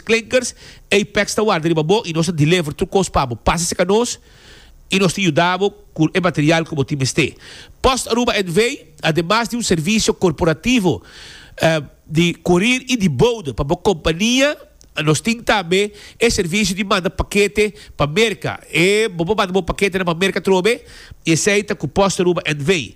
Klinkers, Apex ta warda riba bo y nos ta deliver tur cos pa bo. Pasa cerca nos y nos tin yuda bo cu e material cu bo tin mester. Post Aruba NV. Ademas di un servicio corporativo di corir y di boude pa bo compania, nos tin tambe e servicio di manda pakete pa Merca. E bo por manda bo paketenan pa Merca atrobe, y esey ta cu Post Aruba NV.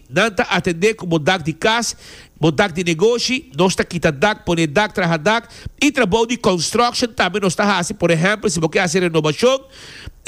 Nan ta atendé ku bo dak di kas, bo dak di negoshi, nos ta kita dak, pone dak, traha dak, i trabou di construction tambe nos ta hasi, por ehèmpel si bo ke hasi renobashon,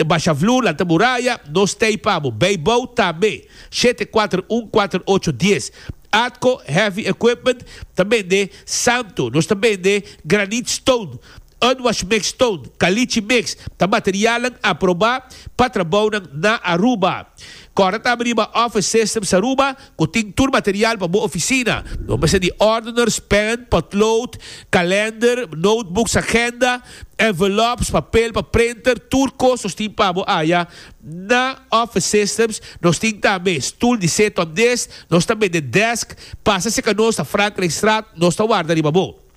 basha vloer, lanta muraya, nos tei pa bo. Bay bou tambe, shete kuater un kuater ocho dies. Atco Heavy Equipment ta bende santo, nos ta bende granite stone. Unwash Mix Stone, Caliche Mix ta materialnan aprobá pa trabounan na Aruba. Kòrda ta biriba Office Systems Aruba ku tin tur material pa bo ofisina. Bo mester di ordeners, pèn, potlood, kalender, notebooks, agenda, envelops, papel pa printer, tur kos nos tin pa bo aya. Na Office Systems nos tin tambe stul di seton des, nos ta bende desk, pasa si e ka nos ta Frankrijkstraat, nos ta warda riba bo.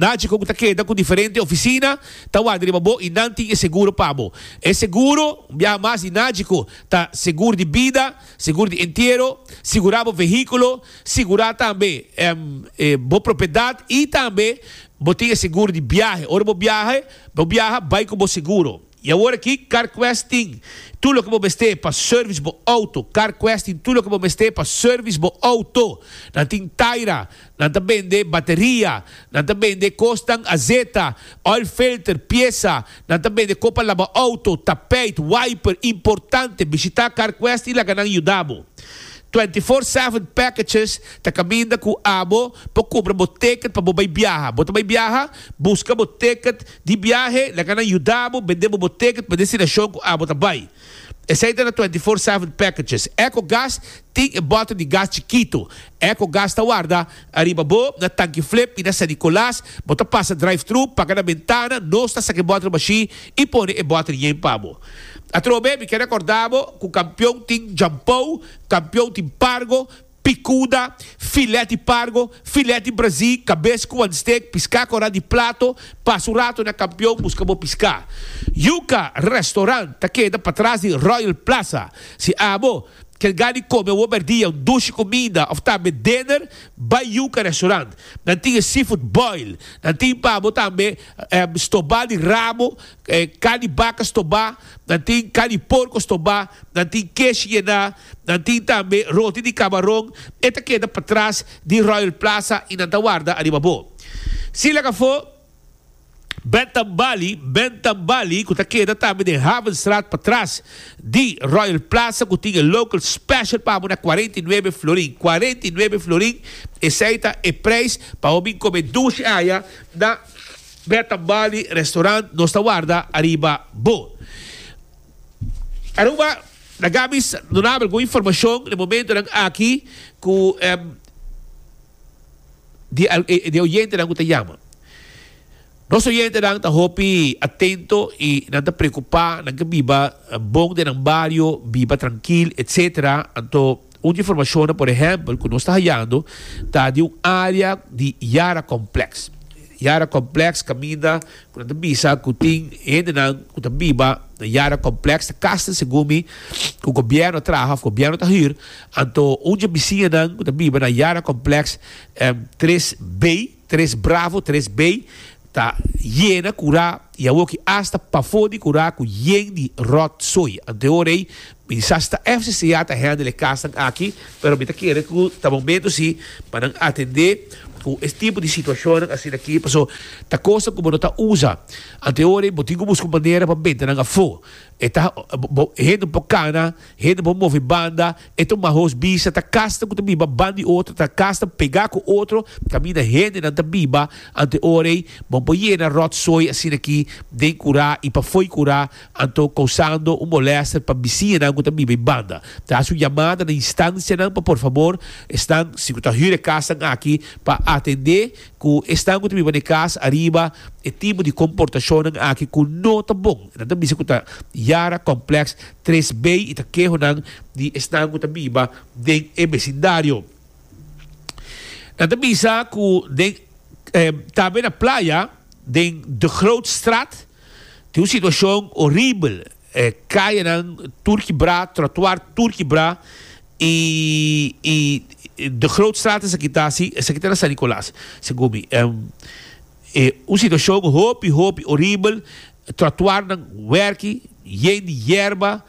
Naci cu cu ta keda cu diferente oficina ta wak riba bo y nan tin e seguro pa bo. E seguro, un biaha mas di naci cu, ta seguro di bida, seguro di entiero, sigura bo vehiculo, sigura tambe bo propiedad y tambe bo tin e seguro di biahe. Ora bo biahe, bo biaha, bay cu bo seguro. Y awor aki, CarQuest tin tur loke bo mester pa service bo auto. CarQuest tin tur loke bo mester pa service bo auto. Nan tin taira, nan ta bende bateria, nan ta bende kosnan azeta, oil filter, piesa, nan ta bende ko pa laba auto, tapijt, wiper, importante, bishita CarQuest y laga nan yuda bo. Twenty four seven packages ta kaminda ku abo pa kumpra bo ticket pa bo bay biaha. Bo ta bay biaha? Buska bo ticket. Di biahe nan kanan yudabo bende bo bo ticket pa destinashon ku abo ta bai. Esei ta na twenty four seven packages. Eco Gas tin e bottle di gas chikito. Eco Gas ta warda ariba bo na tanki flip i na San Nicolas bo ta pasa drive-thru, paga na bentana, nos ta saka e bottle mashi i pone e bottle yen pa bo. Atrobe mi ke rekorda bo ku kampion tin jampou, kampion tin pargo, picuda, filet di pargo, filet di brazi, cabes cu wan steak, pisca cora di plato, pasa un rato na Campeon busca bo pisca. Yuca Restaurant ta keda patras di Royal Plaza. Si abo kel gani come un hoberdia, un dushi comida of tambe dinner, bay Yuca Restaurant. Nan tin e seafood boil, nan tin pa abo tambe stoba di rabo, carn di baca stoba, nan tin carn di porco stoba, nan tin kesh yena, Nan tin tambe roti di kabaron, e ta keda patras di Royal Plaza i nan ta warda ariba bo. Si laga afó, Bentham Bali, Bentham Bali, ku ta keda tambe den Havenstraat patras di Royal Plaza ku tin e local special pa amo na cuarenta y nuebe florin, cuarenta y nuebe florin, esei ta e preis pa bo bin kome dushi aya na Bentham Bali restaurant nos ta warda ariba bo. Aruba. Nan gabi duna algun informacion den e momentonan aki cu di e oyentenan cu ta yama. Nos oyentenan ta hopi atento y nan ta preocupa nan ke biba bon den nan bario, biba trankil etc. Anto. Un di informashonnan, por ehèmpel, ku nos ta hayando ta di un área di Yara Complex. Yara Complex kaminda ku nan ta bisa ku tin hendenan ku ta biba na Yara Complex ta kasten segun mi ku gobièrnu a traha òf gobièrnu ta hür. Anto un dje bisiñanan ku ta biba na Yara Complex tres bay. Tres bravo tres bay ta yena cura y awor ki hasta pafo di cura cu yen di rot zooi antehoor ey mi di sa si ta FCCA ta handle e casnan aki pero mi ta kere cu ta momento si pa nan atende cu e tipo di situacionnan asina aki paso ta cosnan cu bo no ta usa antehoor ey bo tin cu busca un manera pa benta nan afo e ta hende un poco cana hende un poco move banda E tumba hosbisha ta kasta ku ta biba ban di otro, ta kasta pegá ku otro, kaminda hendenan ta biba anto ora ei, bo por yena ròtsoi asina ki den kurá i pafoi kurá, anto kousando un molèster pa bisiñanan ku ta biba ei banda. Ta hasi un yamada na instansianan pa por fabor esnan, si ku ta hür e kasnan aki, pa atendé Ku esnan ku ta biba den kas ariba e tipo di komportashonnan aki ku no ta bon. Nan ta bisa ku ta yara komplèks tres bei i ta kehonan di esnan ku ta biba den e besindario. Nan ta bisa ku den tambe na playa den De Grootstraat tin un situashon oribel. E kayanan tur kibrá, trotuar tur kibrá i i de groot straat esaki ta asi, esaki ta na San Nicolas segumi. E un situashon hopi hopi oribel, trotuarnan werki yen di yerba,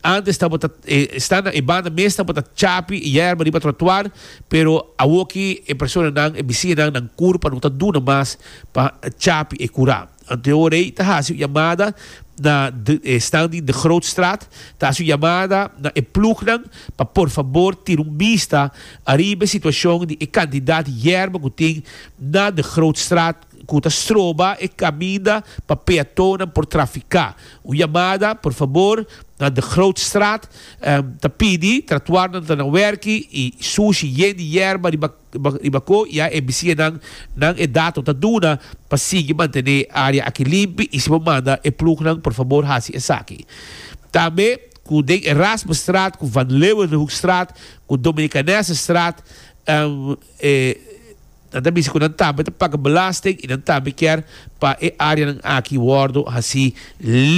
antes tabata e standa e banda mes tabata chapi e yerba riba trotuar pero awoki e personanan e bisiñanan nan kur pa no ta duna mas pa chapi e kurá. Antonio Rey ta hasi un yamada na e stan di De Grootstraat, ta hasi un yamada na e plugnan pa por fabor tira un bista ariba e situashon di e kantidat yerba ku tin na De Grootstraat ku ta stroba e kaminda pa peatonnan por trafiká. Un yamada por fabor na De Grootstraat ta pidi tratuarnan ta na wèrki i sushi yen di yerba riba. Riba ko ya e bisinan nan e dato ta duna pa sigui mantené e área aki limpi i si bo manda e plugnan por fabor hasi esaki. Tambe ku den Erasmusstraat ku Van Leeuwenhoekstraat ku Dominicanessestraat nan ta bisí ku nan tambe ta paga belasting i nan tambe kier pa e áreanan aki wòrdu hasi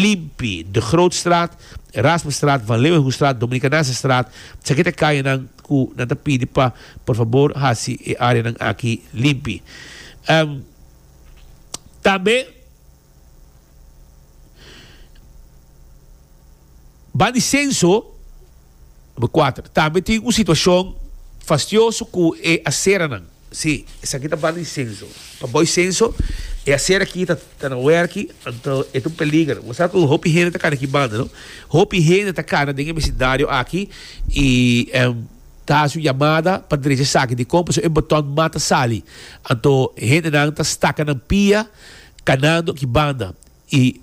limpi. De Grootstraat, Erasmusstraat, Van Leeuwenhoekstraat, Dominicanessestraat, esaki ta e kayanan. cu nan ta pidi pa por fabor haci e areanan aki limpi. Tambe ban di censo, number cuater, tambe tin un situacion fastioso cu e aceranan. Sí, esaki ta banda di senso. Pa boy senso, e aser aki ta ta na werki, anto e ta un peliger. Bo sa ku hopi hende ta kana ki banda, no? Hopi hende ta kana den e besidario aki i em ta hasi un yamada pa drecha esaki dikon pasobra e botòn mata sali. Anto hendenan ta staka nan pia kanando ki banda. y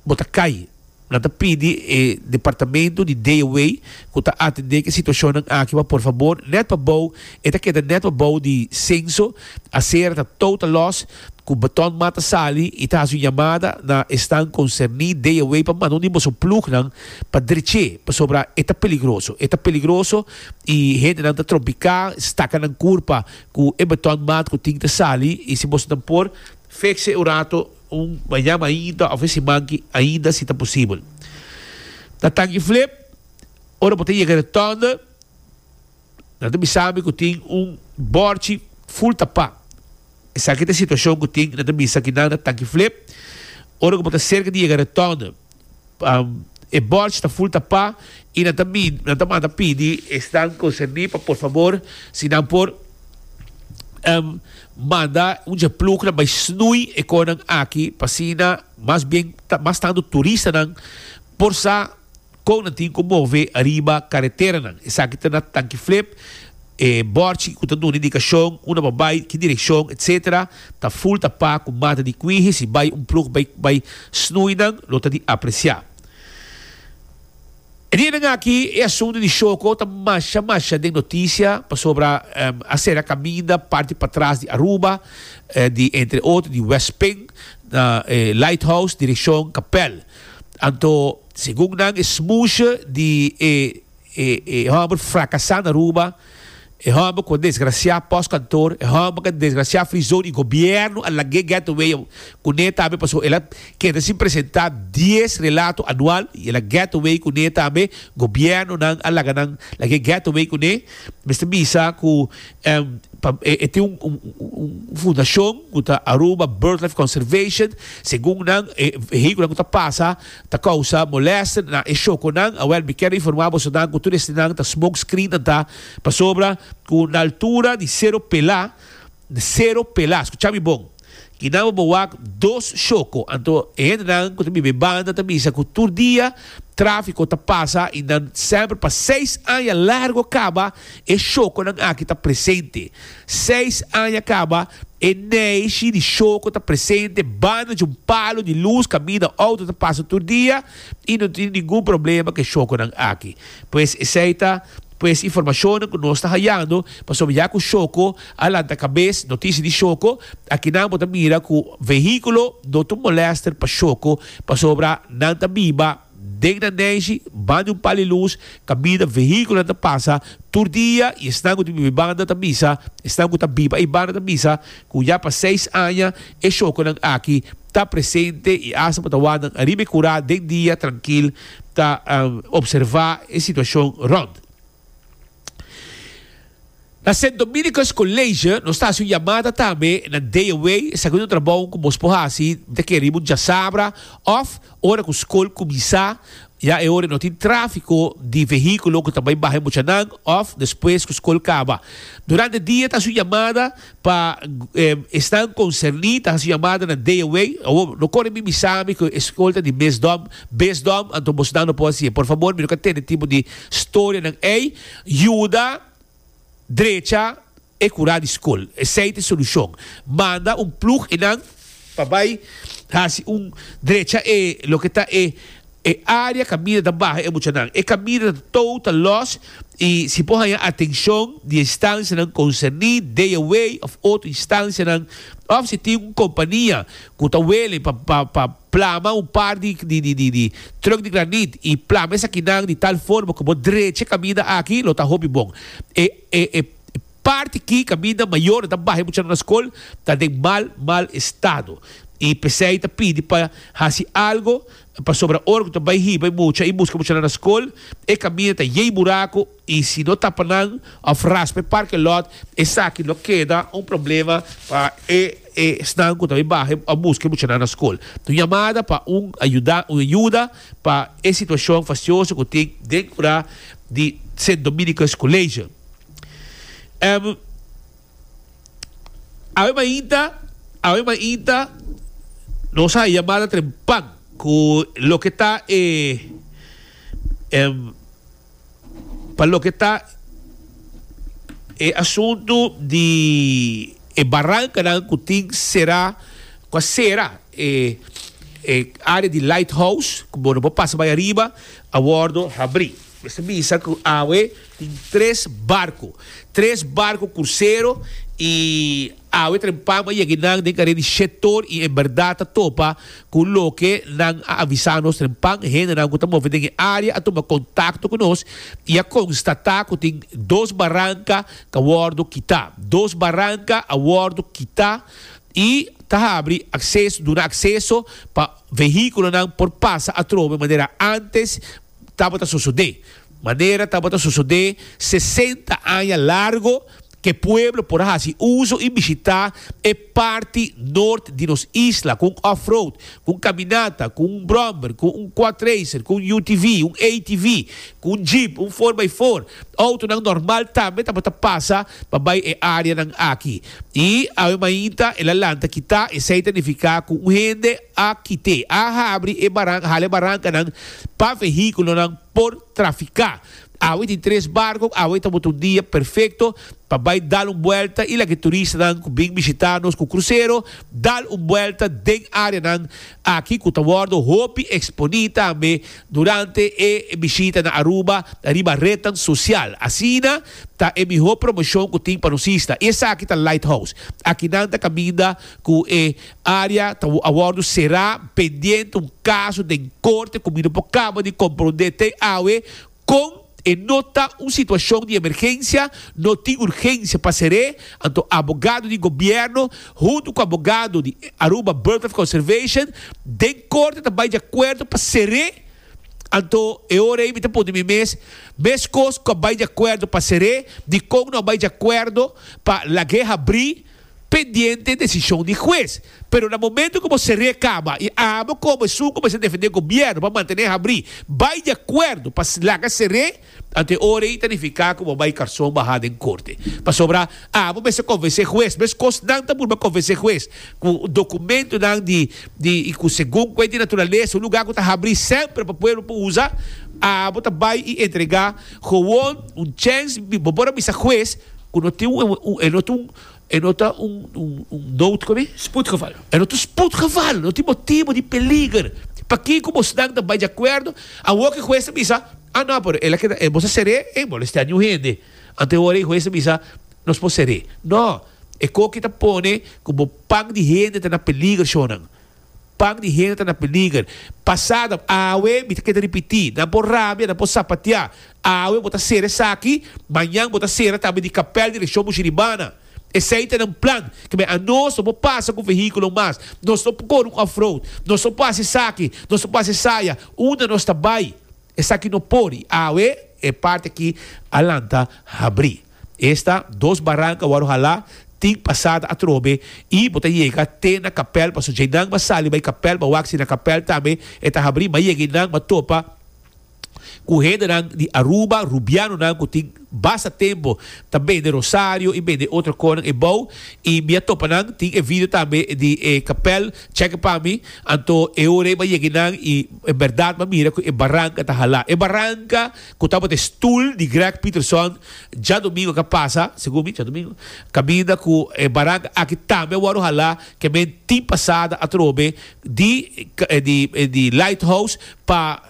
bo ta cay. Nan ta pidi e departamento di DOWEI cu ta atende cu e situacionnan aki pa por fabor net pa bou e ta keda net pa bou di censo acera ta total loss cu beton mat ta sali y ta haci un yamada na esnan concerni DOWEI pa manda un di boso plugnan pa dreche pasobra e ta peligroso e ta peligroso y hendenan ta trompica staca nan curpa cu e beton mat cu tin ta sali y si boso nan por fix e un rato. Un mañan ainda of e simanki ainda si ta posibel. Na Tangi Flip, ora bo ta yega den tònde, nan ta bisa mi ku tin un bòrchi ful tapá. Esaki ta e situashon ku tin, nan ta bisa ki nan na Tangi Flip, ora ku bo ta serka di yega den tònde. e bòrj ta ful ta pa i nan ta mi nan ta manda pidi esnan konserní pa por fabor si nan por manda un dje plugnan bai snui e konan aki pa asina mas bien mas tantu turistanan por sa kon nan tin ku move ariba kareteranan esaki ta na Tanki Flip. E bòrchi ku ta duna indikashon unda pa bai, ki direkshon, etc. Ta ful tapá ku mata di kuiji. Si bai un plug bai bai snui nan, lo ta di apresiá. E dianan aki e asuntu di shoko ta masha masha den notisia pasobra a sera kaminda parti patras di Aruba, di entre otro di West Ping na e Lighthouse direkshon Kapèl. Anto segun nan e smushë di e. E hòmber frakasá na Aruba, e hòmber ku a desgrasiá pòs kantor, e hòmber ku a desgrasiá frizou di gobièrnu a lag'é gètto wei a kuné tambe pasobra el a keda sin presentá dies relato anual i el a gètto wei kuné tambe, gobièrnunan a laga nan lag'é gètto wei kuné. Mester bisa ku e tin un fundashon ku ta Aruba Birdlife Conservation, segun nan e vehíkulonan ku ta pasa. Ta causa molester na e shokonan, awel mi ker informa boso nan cu tur esnan ta smoke screen nan ta pasobra cu na altura di Cero Pela, di Cero Pela, scucha mi bon, kinan bo bo wak dos shoko, anto e hende nan cu ta biba e banda ta bisa cu tur dia trafico ta pasa y nan semper pa seis aña largo caba e shokonan aki ta presente. Seis aña kaba, e neishi di Shoko ta presente banda dje un palu di lus kaminda outo ta pasa tur dia i no tin ningun problema ku e Shokonan aki. Pues esei ta pues informashonnan ku nos ta hayando pasobra ya ku Shoko a lanta kabes notishi di Shoko akinan bo ta mira ku vehikulo no ta un molester pa Shoko pasobra nan ta biba Den nan neshi, banda di un pal di lus, kabida, vehíkulonan ta pasa tur dia i esnan ku ta biba ei banda ta bisa, esnan ku ta biba ei banda ta bisa ku ya pa seis aña e shokonan aki ta presente i asta pa tawanan nan ariba e kurá den dia trankil ta observá e situashon rònt. Na Saint Dominicus College nos ta hasi un yamada tambe na day away, esaki un trabou ku mos por hasi, mi ta kere bo djasabra òf ora ku skol kuminsá, ya e ora no tin tráfiko di vehíkulo ku ta bai baha e muchanan òf despues ku skol kaba. Durante dia ta hasi un yamada Pa esnan konserní ta hasi yamada na Dea Way, awor no kore mi bisami ku e skol ta di mesdom, besdom, anto bosnan no por hasi e. Por fabor, mi no ka tende tipo di storianan ei. Yuda drecha e kurá di skol. Esei ta e solushon. Manda un plug i nan. pa bai hasi un drecha e loke ta e e área kaminda ta baha e muchanan. E kaminda ta tou ta lòs i si por haña atenshon di e instansianan konserní, DeaWay òf otro instansianan òf si tin un kompania ku ta wele pa pa pa plama un par di di di di tròk di granit i plama esakinan di tal forma ku bo drecha e kaminda aki lo ta hopi bon. E e e. Parti ki kaminda mayor nan ta baha e muchanan na skol ta den mal mal estado y p'esey ta pidi pa hasi algo pasobra ora cu ta bay hiba e mucha y busca muchanan na skol e caminda ta yey buraco y si no tapa nan of raspa e parking lot esaki lo keda un problema pa e esnan cu ta bay baha a busca e muchanan na skol. Un yamada pa un ayuda un ayuda pa e situacion fastioso cu tin den ura di St. Dominicus College. Em, Awe mainta, awe mainta nos a yamada trempan cu loke ta e, em, pa loke ta e asuntu di e barancanan cu tin cera, cu a cera e, e area di Lighthouse, cu bo no por pasa bay ariba, a wordo habri. Mester bisa cu awe. Tin tres barku. Tres barku kursero i awe tren pam a yegi nan den karea di Shettor i en bèrdat ta topa ku loke nan a avisa nos. Tren pam hendenan ku ta move den e área a tuma kontakto ku nos i a konstatá ku tin dos baranka ku a wòrdu kitá. Dos baranka a wòrdu kitá i ta habri akseso, duna akseso pa vehíkulonan por pasa atrobe manera ántes. tabata sosodé. Manera tabata sosodé sesenta aña largo ke pueblo por a hasi uso i bishitá e parti nort di nos isla ku un off-road, ku un kaminata, ku un brommer, ku un quadracer, ku un UTV, un ATV, ku un jeep, un four by four. Outonan normal tambe tabata pasa pa bai e áreanan aki. I awe mainta el a lanta kitá, esei ta nifiká ku un hende AQT a habri e baran hale barancanan pa vehiculonan por trafica. Awe tin tres barco, awe ta bota un dia perfecto pa bay dal un buelta y laki turistanan cu bin bishita nos cu crucero dal un buelta den areanan aki cu ta wordo hopi exponi tambe durante e bishita na Aruba riba rednan social. Asina ta e miho promocion cu tin pa nos isla y esaki ta Lighthouse aki nan ta caminda cu e Área ta a wòrdu será pendiente un kaso den korte ku mi no por kaba di komprondé te awe kon e no ta un situashon di emergensia, no tin urgensia pa ser'é, anto abogado di gobièrnu huntu ku abogado di Aruba Birdlife Conservation den korte ta bai di akuerdo pa ser'é, anto e ora ei mi ta punta mi mes, meskos ku a bai di akuerdo pa ser'é, dikon no a bai di akuerdo pa lag'é habrí? pendiente e decision di huez, pero na momento cu bo cer'é caba y abo cobo esun cu mester defende gobierno pa mantené habrí, bay di acuerdo pa laga cer'é, ante ora y ta nifica cu bo bay carson baha den corte. Pasobra abo mester convencé huez, mescos nan ta purba convencé huez cu documentonan di di y cu segun cu e di naturaleza un lugar cu ta habrí semper pa pueblo por uza, abo ta bay y entrega gewoon un chance, bo por a bisa huez cu no tin un. E no ta un nood koe? Spoedgeval. E no ta spoedgeval, no tin motibo di peliger. Pakí ku bosnan ta bai di akuerdo? Awor ku e hues ta bisa, Ah no, pero el a keda, boso ser'é? Ey molestea niun hende. Antehoran e hues ta bisa, Nos por ser'é. No. E koki ta pone ku bo pan di hende ta na peliger, shonnan. Pak di hende ta na peliger. Pasado, awe mi ta keda ripití, nan por rabia, nan por sapateá. Awe bo ta sera esaki, mañan bo ta sera tambe di kapèl di elekshon bushi ribana. Esei ta nan plan, kibé anos no por pasa ku vehíkulo mas, nos no por kore un off-road, nos no por hasi esaki, nos no por hasi esaya, unda nos ta bai? Esaki no por i awe e parti akí a lanta habrí. Esta dos baranka wòrdu halá tin pasada atrobe i bo ta yega te na kapèl pasobra djei nan ba sali bai kapèl ba wak si na kapèl tambe e ta habrí ba yega i nan ba topa ku hendenan di Aruba rubianonan ku tin basta tempu ta bende rosario i bende otro konan e bou i mi a topa nan tin e video tambe di e kapèl chèke pa mi anto e ora ei ba yega i nan i bèrdat mi a mira ku e baranka ta halá e baranka ku tabata e stul di Greg Pieterson djadumingu ka pasa, segun mi, djadumingu, kaminda ku e barang aki tambe a wòrdu halá kemen tin pasada atrobe di di Lighthouse pa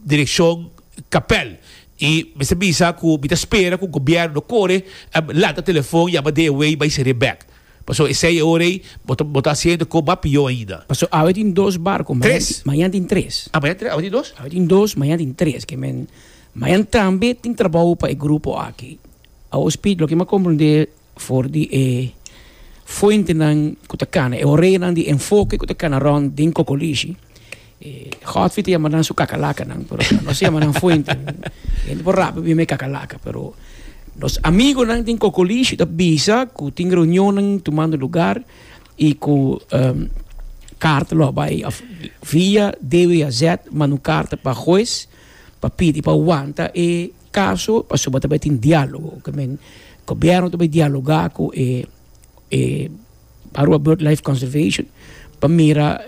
direkshon Kapèl. I mester bisa ku mi ta spera ku gobièrnu no kore lanta telefon yama DeWe bai serie bèk. Paso esey e ora ey bo ta bo ta haci hende coba pior ainda. Paso awe tin dos barco, mañan mañan tin tres. Ah, mañan tin tres, awe tin dos? Awe tin dos, mañan tin tres, ke men mañan tambe tin trabou pa e grupo aki. Awospit loke mi a comprende for di e fuentenan ku ta kana, e oreanan di enfoke ku ta kana rond den Cocolishi, E Godfrey ta yama nan su kakalakanan, pero nos ta yama nan fuente. E hende por rápido bira mi kakalaka, pero nos amigonan den Kokolishi ta bisa ku tin reunionnan tumando lugar i ku um karta lo a bai òf via DWAZ manda un karta pa hues pa pidi pa wanta e kaso pasobra ta bai tin diálogo. Gobièrnu ta bai dialogá ku e e. Aruba Bird Life Conservation pa mira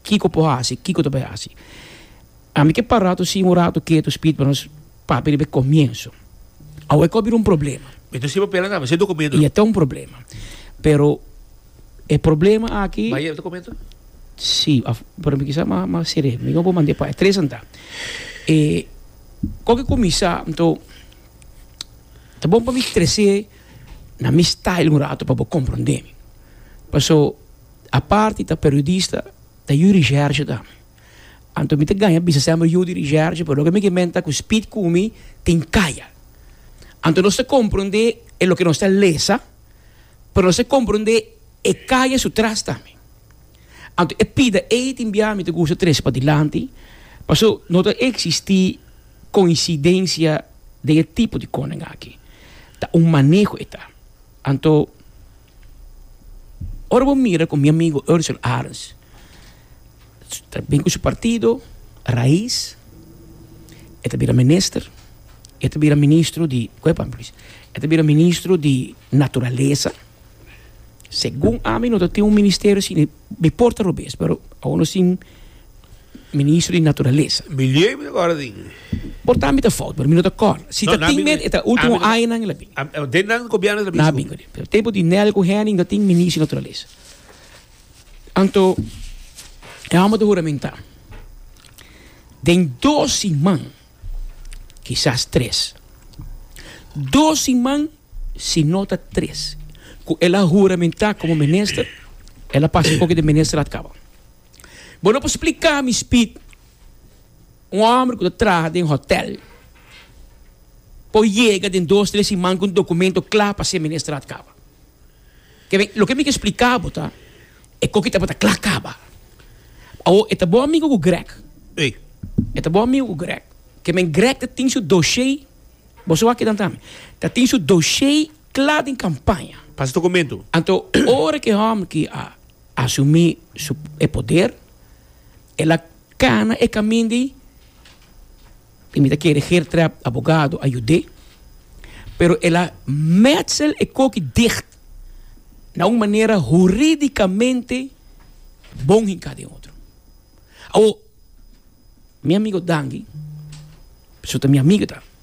kiko por hasi, kiko ta bai hasi. Ami ke para tu sin un ratu ketu spit pa nos papia riba e komienso. Awo e kobira un problema. Mi ta sin papel akaba, sin dokumentu. Ya ta un problema. Pero e problema aki. Bai e dokumentu? Si, af, pero mi kisa mas mas seré. Mi no por mand'é pa tres anta. E kòke kuminsá, anto ta bon pa mi tres'é. na mi style un rato pa bo comprende mi. Paso apart di ta periodista ta yu di Shertje tambe. Anto mi ta gaña bisa semper yu di Shertje pero loke mi ke menta cu Speed cu mi tin caya. Anto nos ta comprende e loke nos ta lesa pero nos ta comprende e caya su tras tambe. Anto e pida ey tin bia mi ta gusta trece pa dilanti paso no ta existi. Coincidencia den e tipo di koning aki ta un maneho e ta, anto ora bo mira ku mi amigo Ursul Arens ta bin ku su partido Raiz e ta bira minister e ta bira ministro di e ta bira ministro di naturalesa segun ami no ta tin un ministerio si mi por ta robes pero awo no sin Ministro di Naturalesa. Milieu i Gòrding. Por ta mi ta fout, pero mi no ta kòrda. Si ta tin men, e ta último añanan el a bin. Den nan gobièrnu el a bin sgu. Na bin kore. Pero tempu di Nel ku Henning ta tin Ministro di Naturalesa. Anto e hòmber ta huramentá den dos siman, kisas tres. Dos siman si no ta tres ku el a huramentá komo minister, el a pasa e koke den ministerat kaba. Bo no por spliká mi spit. Un hòmber ku ta traha den hòtèl por yega den dos tres siman ku un dokumento kla pa ser ministrá at kaba. Kebé, loke mi ke spliká bo ta e koki ta por ta kla kaba. Awo, e ta bo amigu ku Greg. Ei, e ta bo amigu ku Greg. Ke men Greg ta tin su doshé, bo so wak kidan tambe, ta tin su doshé kla den kampaña. Pasa dokumentu. Anto, ora ke hòmber ki a. Asumí su e poder, el a kana e kamin di tin mi ta kere her trè abogado a yud'é, pero el a mètsel e koki dicht na un manera huridikamente bon hinká den otro. Awor, mi amigo Dandy, su ta mi amigo ta.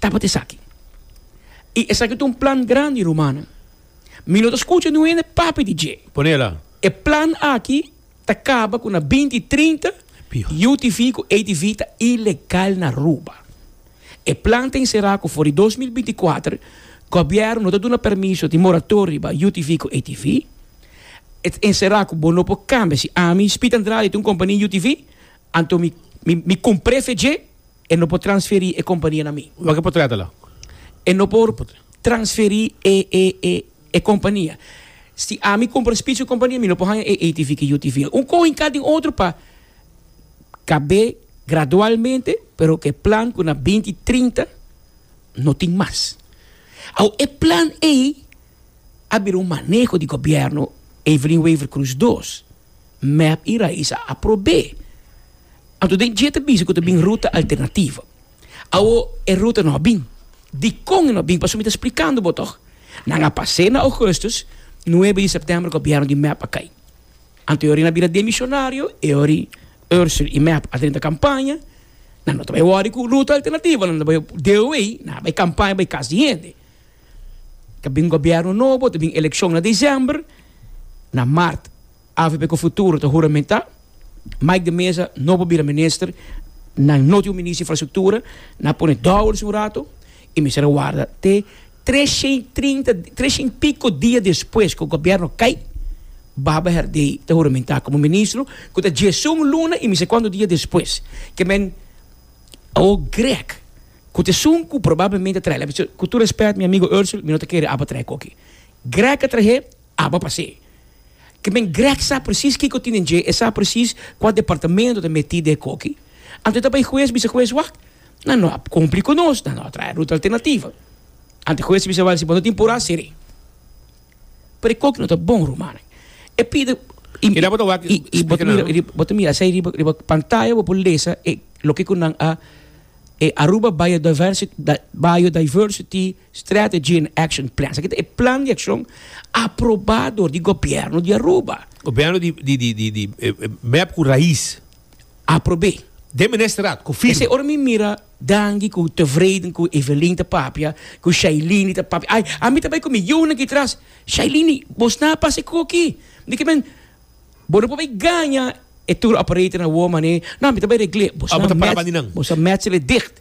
Tabatin esaki. I esaki ta un plan grandi, rumannan. Mi no ta skucha niun hende papia di dje. Ponela. E plan aki ta kaba ku na binti trinta UTV ku ATV ta ilegal na Aruba. E plan ta enserá ku for di dos mil binti kuater gobièrnu no ta duna permiso di moratoria riba UTV ku ATV. E ta enserá ku bo no por kambia. Si ami, Speed Andrade, ta un kompania UTV, anto mi mi mi kumpr'e fe dje. E no por transferi e kompania na mi. Wak e por trata lo. E no por transferi e e e e kompania. Si ami kumpra spits ku kompania mi no por haña e ATV ku UTV. Un koin ka den otro pa kab'é gradualmente pero ku e plan ku na binti trinta no tin mas. Awo e plan ei a bira un maneho di gobièrnu Evelyn Wever-Croes dos. Meb i Rais a aprobé. Anto den dje ta bisa ku ta bin ruta alternativa. Awo e ruta no a bin. Dikon e no a bin? Pasobra mi ta splikando bo tòg. Nan a pas'é na Ougustus, nuebe di Sèptèmber gobièrnu di meb a kai. Anto e ora i nan a bira demishonario, e ora Ursur i meb a drenta kampaña, nan no ta bai wòri ku ruta alternativa, nan ta bai DOA, nan a bai kampaña bai kas di hende. Ta bin gobièrnu nobo, ta bin elekshon na desèmber, na mart Avp cu futuro ta huramentá. Mike de Meza no por bira minister. Nan no tin un minister di infrastructura. Nan a pone dollars un rato y mester a warda te treshent pico dia despues cu gobierno cay, Baba Herdey ta huramentá como ministro cu ta djiesun luna y mi se cuantu dia despues que men Awo Grech cu ta esun cu probablemente a trahe la cu tur respet mi amigo Ursel mi no ta kere aba trahe coke. Grech a trahe Aba pas'e ke men Greg sa presis kiko tinen dje, e sa presis kua departamento ta meti den e koki. Anto e ta bai hues bisa hues, wak, nan no a kumpli ku nos, nan no a traha ruta alternativa. Anto e hues ta bisa wak si bo no tin purá, ser'é. Pero e koki no ta bon, rumannan. E pide i bo ta mira esei riba riba pantaya bo por lesa e loke ku nan a e Aruba Biodiversity Biodiversity. Strategy and Action Plan. Esaki ta e plan di akshon aprobá dor di gobièrnu di Aruba. Gobièrnu di mèp ku rais aprob'é den Ministerat ku firma. Esei ora mi mira Dangi ku tevreden ku Evelyn ta papia, ku Shailini ta papia. Ai, ami ta bai ku mi yu na ki tras, Shailini, bo sna a pasa e koko aki. Mi di ku men, Bo no por bai gaña e tour operator na awor mané. No, mi ta bai regl'é. Bo sna mèt, bo sa mètsel e dicht.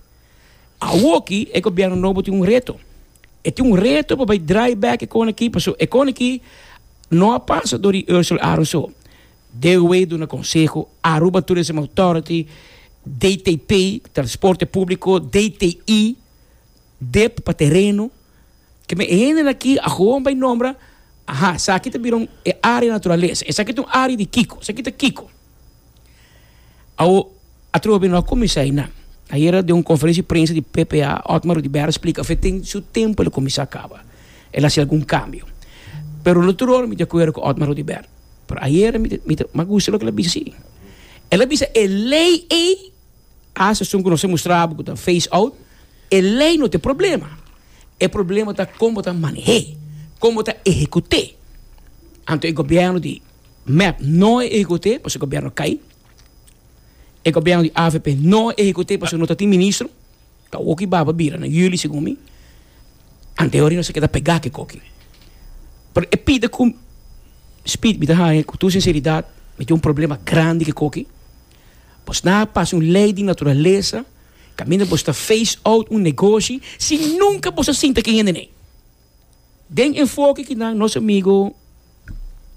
Awoki e gobierno nobo tin un reto. E tin un reto pa bai draai back e koneki paso e koneki no a pasa door di Ursel Aron so. Dewey duna konseho, Aruba Tourism Authority, DTP, Transporte Publico, DTI, dep pa tereno. Ke me e hendenan aki a gewoon bai nombra, aha, esaki ta bira un e area naturalesa, esaki ta un area di kiko, esaki ta kiko. Awo a trobe di no a cuminsa eynan. Ayera den un conferencia di prensa di PPA Otmar Rudibera a splica afe tin su tempo el a cuminsa a caba, el a haci algun cambio. Pero no tur-ora mi ta de acuerdo cu Otmar Rudibera. Pero ayera mi ta mi ta mi a gusta loke el a bisa si. El a bisa e ley ey, hasta asun cu nos a mustra abo cu ta face out, e ley no ta e problema. E problema ta con bo ta manehe, con bo ta ehecuté. Anto e gobierno di. Mep no a ehecute pasobra e gobierno cay, e gobierno di avp no a ehecute pasobra no ta tin ministro, ta oki baba bira na yuli segun mi, ante hori nos a keda pega aki cu aki. Pero e pide cu Speed mi ta haya cu tur sinceridad mi tin un problema grandi cu aki, bos na a pasa un ley di naturaleza caminda bos ta face out un negoshi si nunca bos a sinta cu e hende n'ey. Den enfoke ki nan nos amigo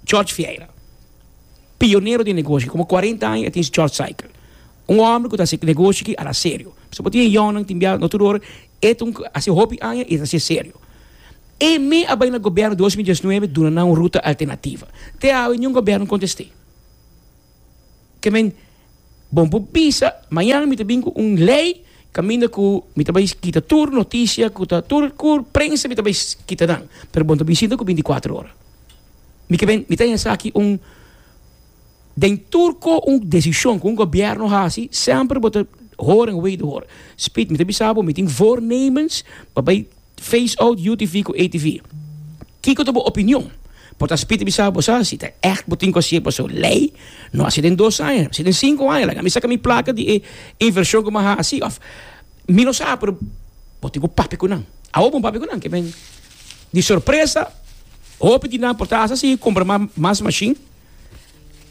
George Vieira, pionero di e negoshi aki, komo kuarenta aña e tin su George Cycle, un hòmber ku ta hasi negoshi aki ala serio, paske bo tin e yònnan, tin biaha, no tur ora, e ta hasi hopi aña i ta hasi serio. E me a bai na gobièrnu dos mil diesnuebe duna nan un ruta alternativa. Te awe niun gobièrnu kontest'é. Ke men, bon bo bisa, mañana mi ta bin ku un lei kaminda ku mi ta bai kita tur notisia ku ta tur kur prensa mi ta bai kita nan, pero bon ta bisita ku bintikwatro ora. Mi ke ben, mi ta haña esaki un, den tur ko un desishon ku un gobièrnu hasi, semper bo ta hora en wederhoor. Spit, mi ta bisa bo, mi tin voornemens pa bai. Face out UTV ku ATV. Kiko ta bo opinion? Por ta spiti bisa bo sa si ta ègt bo tin ku hasié paso lei no hasi den dos aña, hasi den sinku aña. Laga mi saka mi plaka di e invershon ku mi a hasi òf mi no sa pero bo tin ku papia ku nan. Awo bo papia ku nan ke men di sorpresa hopi di nan por ta hasi si kumpra ma mas mashin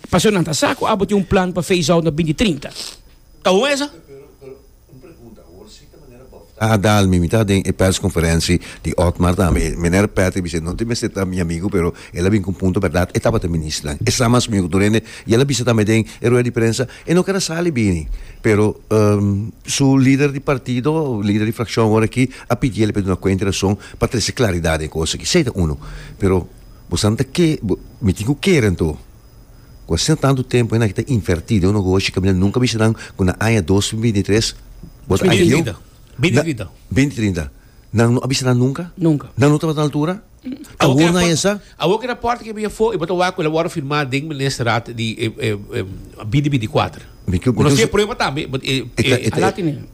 paso nan ta sa ku abo tin un plan pa face out na binti trinta. Ta bon esa? Un pregunta, awor si ta manera Bof ta adal mi mi ta den e persconferentie di Otmar tambe e meneer Patrick mi sey no te mester ta mi amigo pero el a bin con punto berdad e tabata ministran e sa mas mi oco dorende y el a bisa tambe den e rueda di prensa e no keda sali bini pero su lider di partido lider di fraccion awor aki a pidiel e pe duna cuenta y rason pa trece claridad den e cos aki sey ta uno pero bo sa nan ta ke mi tin cu keren to. Cu asina tantu tempo hende aki ta inverti den un ogo hochi caminda nunca bisa nan cu na aña dos mil binti tres bot a hio Binti trinta. Binti trinta nan no a bisa nan nunca? Nunca. Nan no tabata na altura? Ta hoor na esa? Awor ke raport ke bia afo e bo ta wak cu el a worde firma den Ministerraad di binti binti kuater. Mi cu no si e prueba tambe but e A la tene.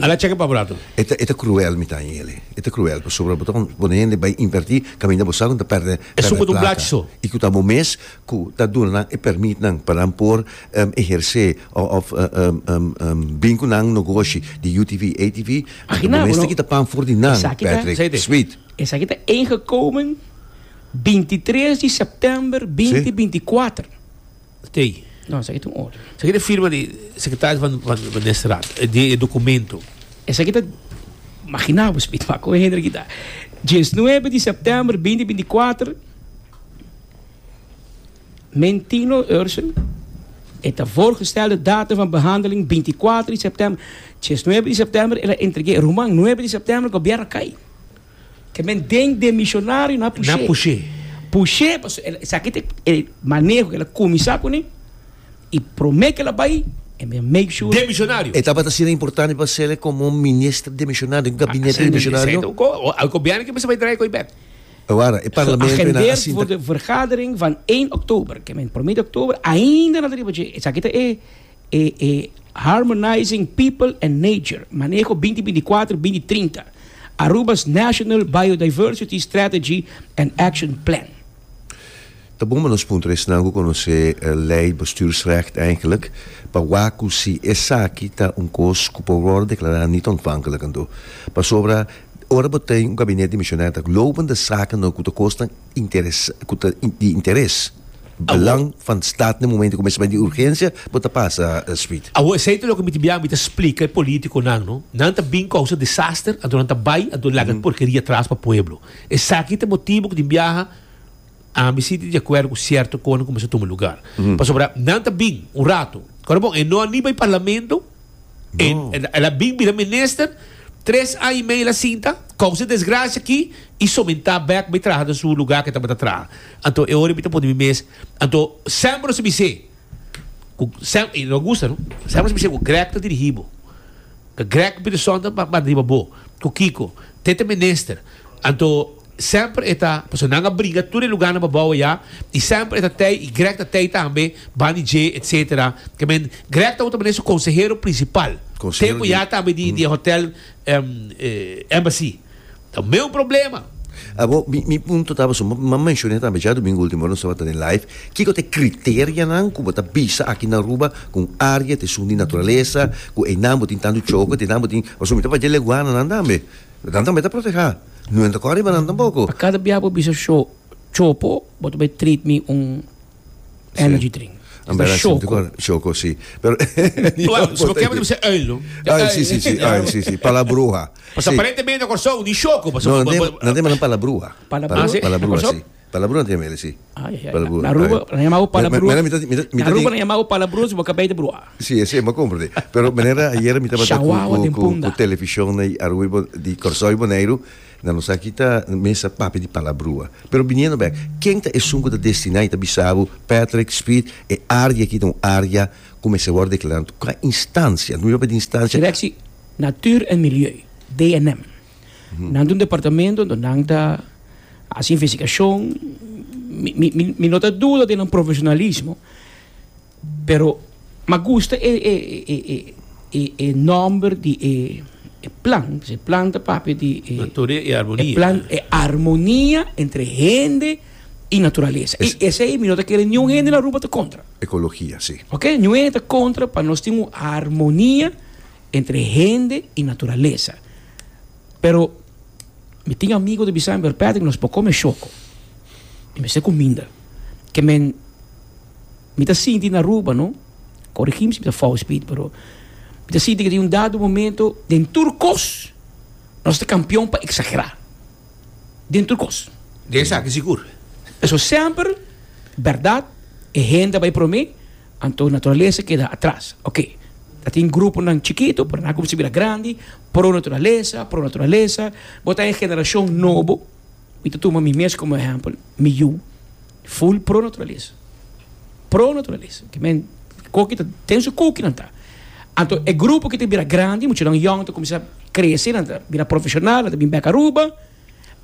A la checka pa bo lato. E ta cruel mi ta aña yeli. E ta cruel pasobra bo ta pone hende bay inverti caminda bo sa cu nan ta perde E su cu ta un blachi so. Y cu ta bo mes cu ta duna nan e permit nan pa nan por eherce of bin cu nan nogoshi di UTV, ATV, bo mes tin kita pan for di nan, Patrick, sweet. Esaki ta ingekomen bintitres di september binti binticuater. Tei. No, esaki ta un otro. Esaki ta e firma di secretario van van van Nesrat, di e documento. Esaki ta magina bo speed ma con hende aki ta dieznuebe di september binti binti kuater men Tino Ursen e ta voorgestel de datum van behandeling binti kuater di september dieznuebe di september el a entrege e ruman nuebe di september gobièrnu a kai. Ke men den den misionario na push'é. Na push'é. Push'é pasobra el esaki ta e maneho ke el a kuminsá kuné i promé ke el a bai e mester make sure. Den misionario. E tabata asina importante pa Cele komo un minister den misionario, den gabinete den misionario. E gobièrnu ke mester bai draaia ku e bèk. Ta wara, e parlamento i nan a sinta. Geagendeerd voor de vergadering van één oktober, ke men promé di oktober ainda na ta riba dje. Esaki ta e. e e Harmonizing People and Nature, Maneho binti binti kuater, binti trinta, Aruba's National Biodiversity Strategy and Action Plan. Ta bon pa nos puntra esnan ku konosé Lei Bestuursrecht eigenlik pa wak ku si esaki ta un kos ku por wòrdu deklará nitontvanklik anto. Pasobra ora bo tin un gabinete di misionèr ta globende saken no ku ta kosnan. interes ku ta di interes belang van staat na momento ku mester bay di urgensia bo ta pasa Sweet. Awo esei ta loke mi ta bia mi ta splika e politico nan no nan ta bin causa disaster anto nan ta bay anto laga e porkeria tras pa pueblo esaki ta motibo ku tin biaha ami si ta di acuerdo ku cierto conan ku mester tuma lugar pasobra nan ta bin un rato kora bon e no a ni bay parlamento. En el a bin bira minister. Tres aña y medio la sinta, causa e desgracia aki, y sominta bek bay traha na su lugar cu e tabata traha. Anto e ora mi ta pone mi mes, anto semper nos a bis'e, cu sem, y no a gusta no, semper nos a bis'e cu Grech ta dirigi bo, cu Grech Peterson ta manda riba bo, cu kico, te ta minister. Anto semper e ta, pasobra nan a bringa tur e lugarnan pa bou ayá, i semper e ta tei, i Greg ta tei tambe, ban di dje, etcetera. Ke men, Greg tabata manera su konsehero prinsipal, tempu ayá tambe di e hotèl Embassy. Ta meun problema. Abo, mi, mi punto ta pasobra bo menshoné tambe dja dumingu último ku nos tabata den live, kiko ta e kriterianan ku bo ta bisa aki na Aruba ku un área ta esun di naturalesa, ku einan bo tin tantu choco, einan bo tin, pasobra mi ta fala dje leguananan tambe. Nan tambe ta protehá. Nunde ta kò riba nan tampoko. Pa kada bia bo bisa sho, chopo, bo ta bai treat mi un energy drink. An bera sinti kor, shoko si. Pero Well, si bo kèn bo ta bisa oil no. Oil si si si, oil si si, palabrua. Pasobra aparentemente na Kòrsou ni shoko. No, nan tin, nan tin manan palabrua. Palabrua? Ah si, na Kòrsou? Palabronan tin Amelia si. Na Aruba nan yama bo palabronan. Na Aruba nan yama bo palabronan si bo ka bay ta brua. Si esei bo a comprende. Pero manera ayera mi tabata ku television na Aruba di Corazao y Boneiru na nos aki ta mes a papia di palabrua. Pero biniendo bek ken ta esun ku ta destina y ta bisa bo Patrick Speed e área aki ta un área ku mester wòrdu deklará ku a instancia. Anta mi papia di instancia. Directie Natuur en Milieu, DNM. Nan ta un departamento do nan ta haci investigacion. Mi, mi, mi, mi no ta duda den nan profesionalismo, pero ma gusta e, e, e, e, e, e nomber di e, e plan. Pues e plan ta papia di e, Naturia y armonía. e plan, e armonia entre hende y naturalesa. Es- Y esei mi no ta kere niun hende na Aruba ta contra. Ecologia, sí. Ok, niun hende ta contra pa nos tin un armonia. entre hende y naturalesa pero mi tin amigo ta bisami pero Patrick nos por come shoko mi mester cuminda ke men mi ta sinti na Aruba no corigim si mi ta fout Speed pero mi ta sinti ke den un dado momento den tur cos nos ta campeon pa exagera den tur cos De esaki sigur. Pasobra semper berdad e hende ta bay prome. Anto naturalesa keda atras. Ok, ta tin gruponan chikitu, pero nan a kuminsá bira grandi, pro naturalesa, pro naturalesa. Bo ta e generashon nobo, mi ta tuma mi mes komo ehèmpel, mi yu ful pro naturalesa, pro naturalesa. Ke men koki ta den su kuki nan ta. Anto e grupo ki ta bira grandi, muchanan yòn ta kuminsá krese, nan ta bira profeshonal, nan ta bin bèk Aruba.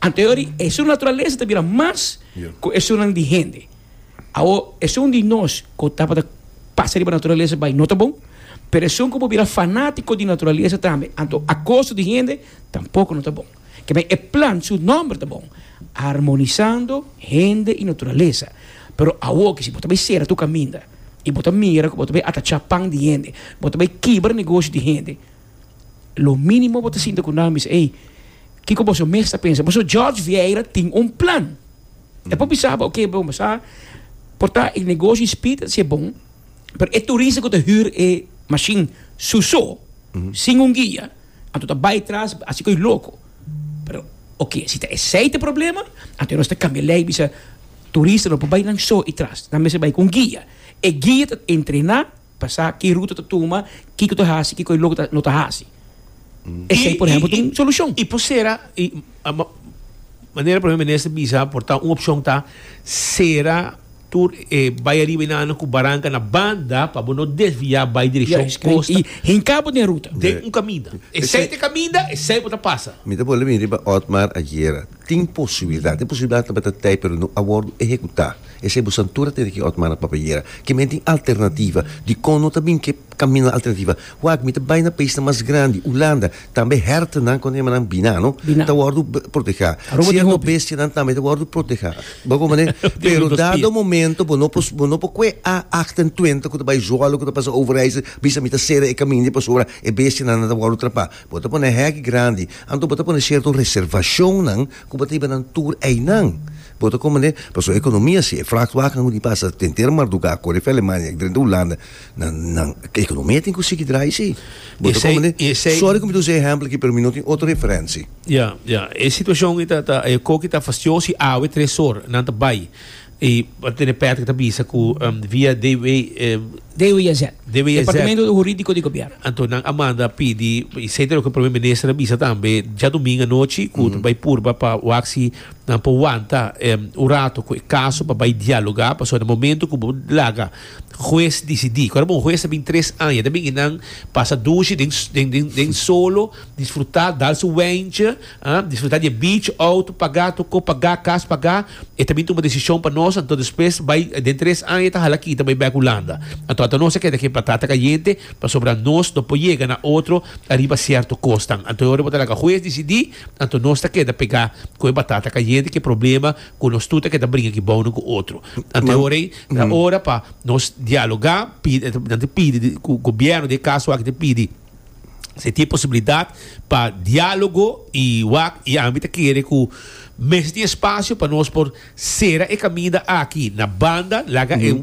Ante hori esun naturalesa ta bira mas ku esunnan di hende. Awor, esun di nos ku tabata pasa riba naturalesa bai no ta bon, pero esun ku por bira fanátiko di naturalesa tambe, anto a kosta di hende, tampoko no ta bon. Kemei e plan su nòmber ta bon, Armonisando hende i naturalesa. Pero awor ke si bo ta bai sera tu kaminda i bo ta mira ku bo ta bai atachá pan di hende, bo ta bai kibra negosio di hende, Lo mínimo bo ta sinti ku nan bisa, ei, kiko boso mes ta pensa? Boso George Vieira tin un plan. Mm. E por bisa bo, oké, bon, bo sa, por ta e negoshi di speed ta ser bon, pero e turista ku ta hür e mashin su so, mm. sin un guia, anto ta bai tras hasi ko'i loko. Pero, oké, si ta esei ta e problema, anto e nos ta kambia lei bisa turista no por bai nan so i tras, nan mester bai ku un guia. E guia ta entrená. Pa sa ki ruta ta tuma, kiko ta hasi, kiko e lo ku no ta hasi. Esei por ehempel ta un solushon. I por sera, i manera Prome Minister bisa por ta un opshon ta sera tur e bai ariba i nana ku baranka na banda pa bo no desviá bai direkshon kosta. I hinká bo den e ruta. Den un kaminda. Esei ta e kaminda, esei bo ta pasa. Mi ta bole mi riba Otmar Aguirre, tin posibildat, tin posibildat tabata tei pero no a wòrdu ehekutá. Esei bo santura a tene ki ot mana papia yera. Ke men tin alternativa. Dikon no ta bin ke kaminda alternativa? Wak, mi ta bai na paisnan mas grandi, Ulanda, tambe hèrtennan kon ta yama nan binano, ta wòrdu protehá. Sier no bestianan tambe ta wòrdu protehá. Bo hopi manera? Pero dado momento bo no por bo no por kue a acht en tuenta ku ta bai zwolle, ku ta pasa overijse, bisa mi ta sera e kaminda pasobra e bestianan nan ta wòrdu trapá. Bo ta pone hèk grandi. Anto bo ta pone sierto reservashonnan ku bo ta iba nan tur einan. Bo ta komende, pa su ekonomia si e flak waka no di pasa den ter mardugá kore fè Alemania drenta Hulanda na nan ekonomia tin ku sigui drai si bo ta komende sòri ku mi ta usa e ehèmpel aki pero mi no tin otro referensi. Ya, ya, e situashon aki ta ta e koki ta fastioso i awe tres or nan ta bai i bo ta tene pèt ku ta bisa ku via DW, DWZ, Departamento Hurídiko di Gobièrnu. Anto nan a manda pidi i esei ta loke Prome Minister a bisa tambe djadumingu anochi ku ta bai purba pa wak si. Nan por wanta un rato cu e caso pa bay dialoga pasobra na momento cu bo laga huez dicidi, cu un huez ta bini tres aña ta bini nan pasa dushi den solo disfruta dal su wentje disfruta di e beach auto paga tur cos paga cas paga e ta bini tuma decision pa nos anto despues bay den tres aña e ta hala kita bay bek Hulanda anto ata nos ta keda ke batata cayente pasobra nos no por yega na otro ariba cierto cosnan anto e ora bo ta laga huez dicidi. Anto nos ta keda pegá ku e batata kayente ku e problema ku nos tur ta keda bringa aki bou uno ku otro. Anto e ora ei ta ora pa nos dialogá, pidi, nan ta pidi ku gobièrnu, den e kaso aki ta pidi si e tin posibilidat pa diálogo i wak i ami ta kere ku mester tin espasio pa nos por sera e kaminda aki na banda laga e.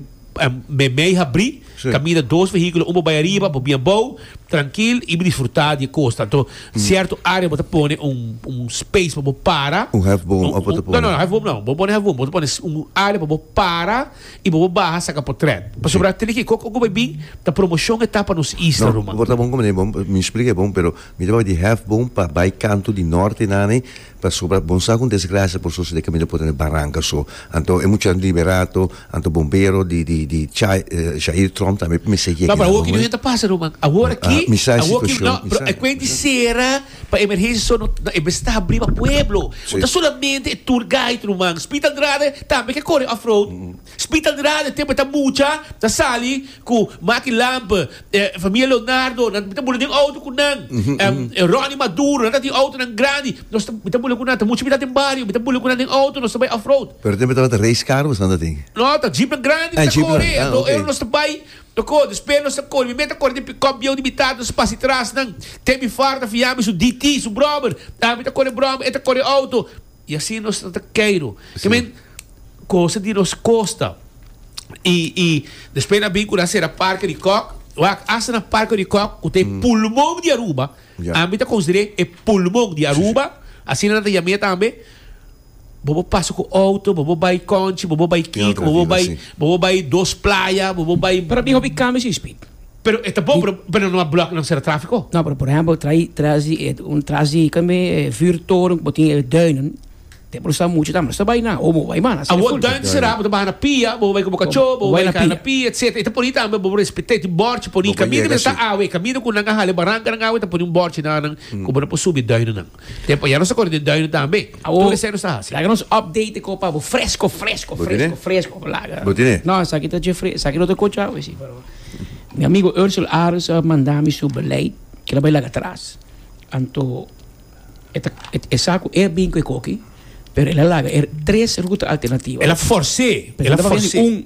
me mei habri caminda dos vehiculo un bo bay ariba bo bien bow trankil y bo disfruta di e cos tanto cierto area bo ta pone un space pa bo para un half boom of bo ta pone no no half boom no bo pone half boom bo ta pone un area pa bo para y bo bo baha saca potret pasobra tene ki kok oko bay bin ta promoción e ta pa nos isla ruman no bo ta bon mi explica e bon pero mi ta wak di half boom pa bay kanto di norte nan e. Pasobra bon sa ku un desgrasia por sosodé kaminda por tene baranka so. Anto e mucha liberá ato, anto bombero di di di chai Jair Trump tambe por mester yega Papá, awor ki no e ta pasa, Ruman. Awor aki, Mi sa e awor ki, situashon, no, mi pero sa, e kuent mi di sa. sera pa emergensia so, no, no, e mester ta habrí pa pueblo. No Si. ta solamente e tour guide, Ruman. Speed Andrade tambe ke kore off-road. Spital di Rada tempo e ta mucha ta sali cu Maki Lamp familia Leonardo nan mi ta bula den auto cu nan Ronnie Maduro nan ta tin autonan grandi nos ta mi ta bula cu nan ta mucha abitan den bario mi ta bula cu nan den auto nos ta bay off road. Pero tempo e tabata race car bo esnan ta tin? No ta jeep nan grandi mi ta cori e nos ta bay loco despues nos ta cori mi me ta cori den pick up bieu di mi tata nos ta pasa di tras nan te mi fara ta fia mi su DT su brother mi ta cori brother e ta cori auto Y asina nos ta ta keiru. I mean, cosa di nos costa. Y, y despues nan bin cu nan cera Parke di Kok. Wak, hasta na Parke di Kok, cu ta e pulmon di Aruba, Ya. ami ta considera e pulmon di Aruba, asina nan ta yam'e tambe, bobo pasa cu auto, bobo bay Conchi, bobo bay Kiko, bobo bay, bobo bay dos playa, bobo bay. Pero mi hopi cambia sin speed. Pero e ta bon, pero, pero no a block nan sera trafiko. No, pero por ehempel trai tras di e un tras di kami e vuurtoren ku bo tin e duinen te por sa mucha tambe no sta bai na o bo bai mana asina Awo full. duin sera, bo ta baha na pia, bo bai ku bo kachó, bo bai ka na pia etcetera. E ta poni tambe bo respet'é tin bòrchi poni Bo ka kamina yega mester ta así. awe, kamina ku nan a hale baranka nan awe ta poni un bòrchi nan ku bo no por subi duinen nan. Tempo a ya nos a kore den duinen tambe. Tur esei nos a hasi. Laga nos update ku pa bo fresko, fresko, fresko, fresko. Laga. Bo tene? No, esaki ta dje fresko. Esaki no ta kochá hoy si, pero mi amigo Ursel Aris a manda mi su beleid ku el a bai laga atras. Anto e ta e sa ku e bin ku e koki, pero el a laga e tres ruta alternativa. El a fors'é, el a fors'é.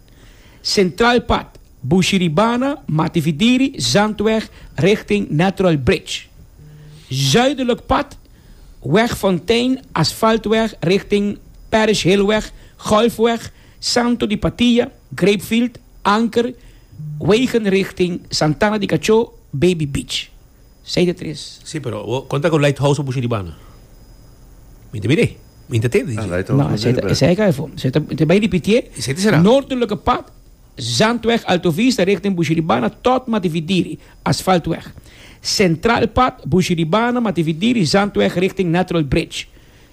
Centraal Pad, Bushiribana, Matividiri, Zandweg richting Natural Bridge. Zuidelijk Pad, Weg Fontein, Asfaltweg richting Parish Hillweg, Golfweg, Santo di Patia, Grapefield, Anker, wegen richting Santana di Cachó, Baby Beach. Seis di tres. Sí, pero bo konta ku Lighthouse a busha riba na? Mi ta mire. Mi ta tende di dje. No, esei ta esei ka efo. Esei ta ta bai ripitié. Esei ta será. Noordelijke pad, Zandweg Alto Vista richting busha riba na tòt Matividiri, Asfaltweg. Sentraalpad, busha riba na Matividiri, Zandweg richting Natural Bridge.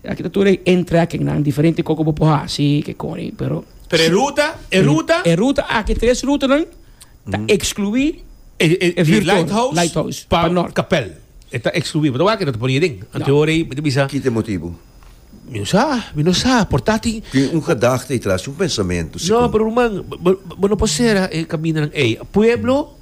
Aki ta tur e entra ken nan diferente koko bo por hasi ke koni pero Pero e ruta, e ruta? E ruta aki, tres rutanan ta ekskluí E e e Lighthouse Lighthouse pa pa nort. Kapèl. E ta ekskluí. Bo ta wak e no ta por yeren. Anteora ei mi ta bisa, Kit e motibu? mi no sa, mi no sa, por ta tin Tin un gedagte ei tras, un pensamentu No, sikur. pero ruman, bo bo no por sera e kamindanan ei. Pueblo.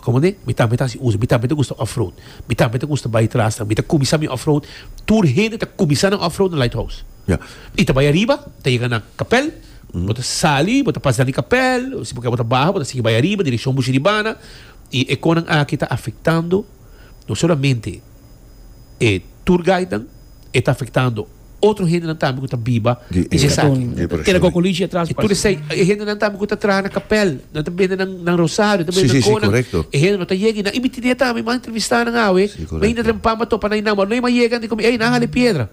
Como ne? Mi tambe ta hasi usa, mi tambe ta gusta offroad, mi tambe ta gusta bay tras nan, mi ta cuminsa mi offroad, tur hende ta cuminsa nan offroad na Lighthouse, y ta bay ariba ta yega na Kapel, bo ta sali bo ta pasea di Kapel, si bo kier bo ta baha bo ta sigui bay ariba direccion Busiribana, y e conan aki ta afectando no solamente e tour guide nan, e ta afectando. otro hendenan tambe ku ta biba di esaki. Keda kokolichi atras pas. I tur esei e hendenan tambe ku ta traha na kapèl, nan ta bende nan rosario, nan ta bende nan konan, e hende no ta yega i nan i mitid'é tambe mas entrevistá nan awe, mi hinter den pampa topa nan i nan no e mas yega anto mi ey nan hali piedra.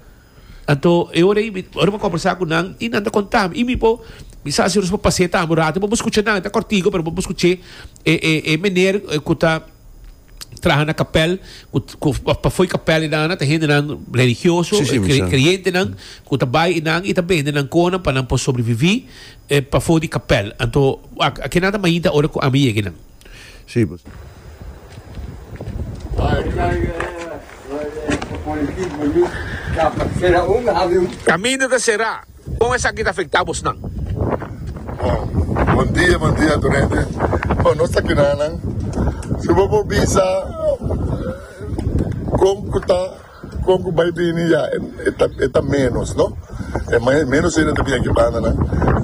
Anto e ora ei ora mi a kombersá ku nan i nan ta kontá mi i mi bo mi sa ansioso pa pas'é tambe un ratu i bo bo skucha nan e ta kòrtiku pero bo bo skuch'é e e e mener ku ta traha na kapèl ku ku pafoi kapèl i nan ana ta hendenan religioso Sí, sí, mi kre- sa. kreyentenan ku ta bai i nan i ta bende nan kona pa nan por sobreviví eh, pafo di kapèl anto a a kenan ta mainta ora ku ami yega i nan Sí, pues. Caminda ta será. Kon esaki ta afektá bosnan? Bon dia, bon dia tur hende. Bon, nos ta kina nan si bo por bisa kon ku ta, kon ku bai bini ya e ta ménos, no? E mai ménos hende ta bini aki banda nan.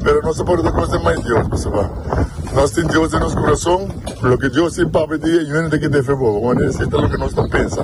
Pero nos ta por ta kos den mai Dios, pasobra nos tin Dios den nos kurason. Loke Dios tin papia di e yunan ta kende fe bobo, wans e ta loke nos ta pensa.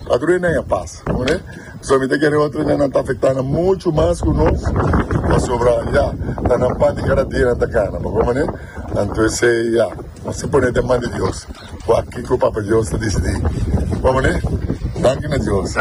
Ato de nan a pasa, no e? So mi ta kere otro de nan ta afecta nan mucho mas cu nos, pasobra ya, ta nan parti cada dia nan ta gana, pa bon maner? Anto esey, ya, nos a pone den man di Dios, wak kico Papa Dios ta dicidi. Bon maner? Danki na Dios.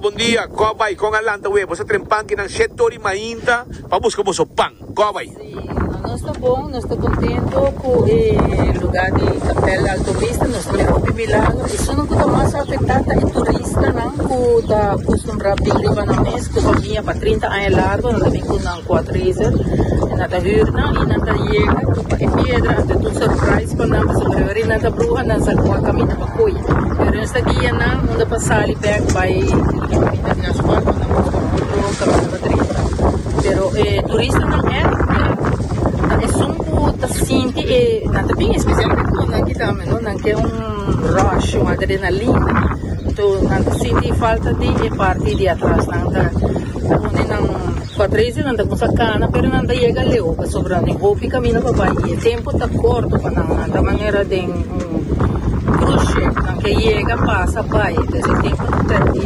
Bon dia, cor bay con a lanta wee boso tren pan ki nan shee tori mainta pa busca boso pan. Gobay. Sí, nos ta bon, nos ta contento cu e lugar di Capel de Alto Vista, nos mira hopi milagro. E zona cu ta mas afecta ta e turistanan cu ta acostumbrá bini riba nan mes cu famia pa trinta aña largo, nan ta bin cu nan quadraiser y nan ta hür nan y nan ta yega cu pa e piedra anto e ta un surprise pa nan pasobra riba ri nan ta bruha nan sa cu a caminda pa coy. Pero nos ta guia nan unda pa sali bek bay y caminda di nan scuol cu nan por ta coge otro caminda. trenta. Pero e turistanan èn ta esun ku ta sinti e nan ta bin, spesialmente nan ku ta menor, nan ke un rush, un adrenalina. Anto nan ta sinti e falta di e parti di atras. Nan ta pone nan pa tres di nan ta kumsa kana pero nan ta yega leu pasobra nan tin hopi kaminda pa bai i e tempu ta korto pa nan. Nan ta manera den un cruise ship, nan ke yega, pasa, bai. Entonces e tempu ta pèrdi.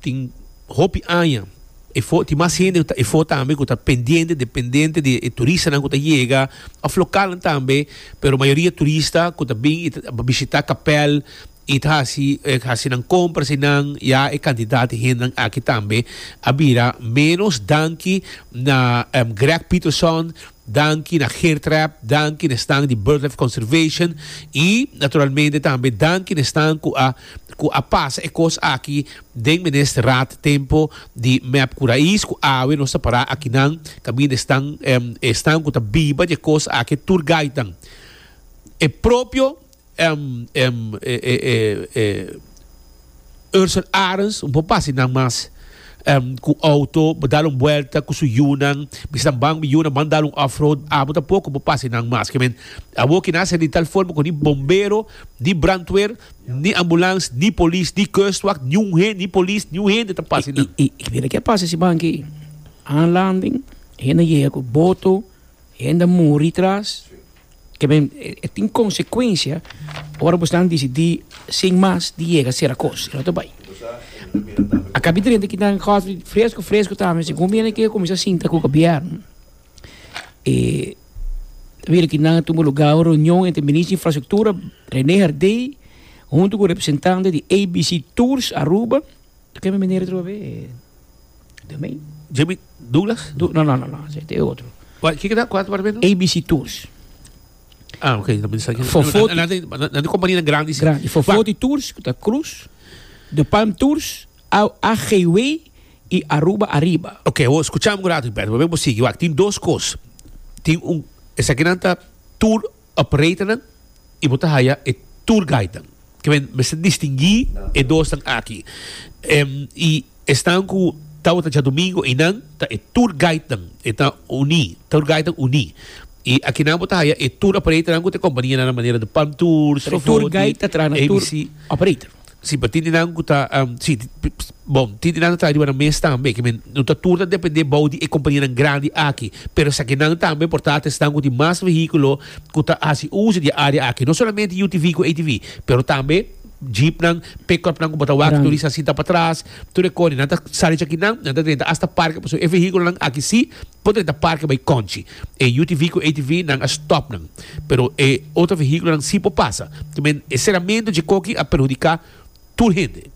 Tin hopi aña e fo tin mas hende ta efo tambe ku ta pendiente dependente di e turistanan ku ta yega òf lokalnan tambe pero mayoria turista ku ta bin i ta bishita kapèl i ta hasi hasi nan kompras einan ya e kantidat di hendenan aki tambe a bira menos danki na Greg Peterson Danki na Geertrap, danki na esnan di Birdlife Conservation y naturalmente tambe danki na esnan cu a cu a pasa e cos aki den menester rat tempo di Mep Curaís cu awe nos ta para akinan caminda esnan esnan cu ta biba dje cos aki tur gaitan e propio Em em e e e e Ursel Arens un por pasi nan mas em ku outo bo dal un buelta ku su yunan bisa nan ban mi yunan ban dal un off road abo tampoco por pasi nan mas ke men awor kina hasi di tal forma ku ni bombero ni brandweer ni ambulance ni polis ni kustwacht ni un hen ni polis ni un hende ta pasi nan. I i kibera ke a pasa si ban aki aanlanding hende a yega ku boto hende a muri tras. Ke men e tin konsekuensia ora bo stan disidí sin mas di yega sera kos i no ta bai. A kapita renta kita nan kòs fresku fresku tambe segun mi a ke kuminsá sinta ku gobièrnu e bira ki nan a tuma lugá un reunion entre Minister di Infrastruktura Rene Herdey huntu ku representante di ABC Tours Aruba, ta keme manera atrobe. De mei. JB Douglas? Du no, no, no, no, se te e otro. Kua, kiko ta? Kua ta parabena? ABC Tours. Ah, ok, na pensa ki. Fofo- Na- na- na- na- na- na kompania grandi. si. Grandi. Fofo Wa- di Tours, ku ta Cruz, De Palm Tours, A- AGWay i Aruba Arriba. Ok, wo skucham un rato Humberto, pabia bo sigui. Wak, tin dos kos. Tin un, esakinan ta tour Operatornan y bo ta haya e tour guidenan. Kiben mester distingui e dosnan aki. Y esnan cu tabata djadomingo eynan ta e tour guidenan. E ta uni, tour guidenan uni. Y akinan bo ta haya e tour operatornan cu ta e companianan a manera di Palm Tours, Fofoti, ABC. Si, pa tintinan ku ta, si, bon, tintinan ku ta ariba nan mes tambe, ke men no ta tur ta dependé bou di e kompanianan grandi aki, pero esaki nan tambe por ta esnan ku tin mas vehíkulo ku ta hasi uso di e área aki, no solamente UTV ku ATV, pero tambe jeepnan, pick-upnan ku bo ta wak turista sinta patras, tur e kos, nan ta sali esaki nan, nan ta renta asta parke, pasobra e vehíkulonan aki sí Por e ta parke bai konchi. E UTV ku ATV nan a stòp nan, pero e otro vehíkulonan si por pasa. Te men e seramentu dje koki a perhudiká tur hende.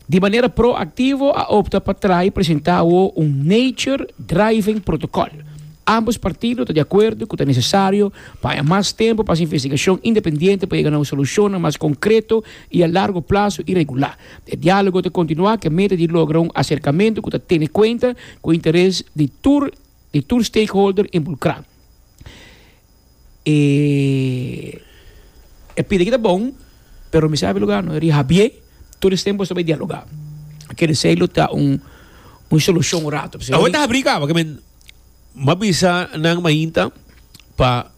Di manera proaktivo a opta pa tra'i presentá awo un Nature Driving Protocol. Ámbos partido ta di akuerdo ku ta nesesario pa haña mas tempu pa hasi investigashon independiente pa yega na un solushonnan mas konkreto i a largo plaso i regulá. E diálogo ta kontinuá ku e meta di logra un aserkamentu ku ta tene kuenta ku interes di tur di tur stakeholder inbulkrá. E pidi aki ta bon, pero mi sabi lugar no rihabié, tur es tempu staba e dialogá. Keresei lo ta un un solushon un ratu. Awor ta habrí kaba, ke men, m'a bisa nan mainta pa.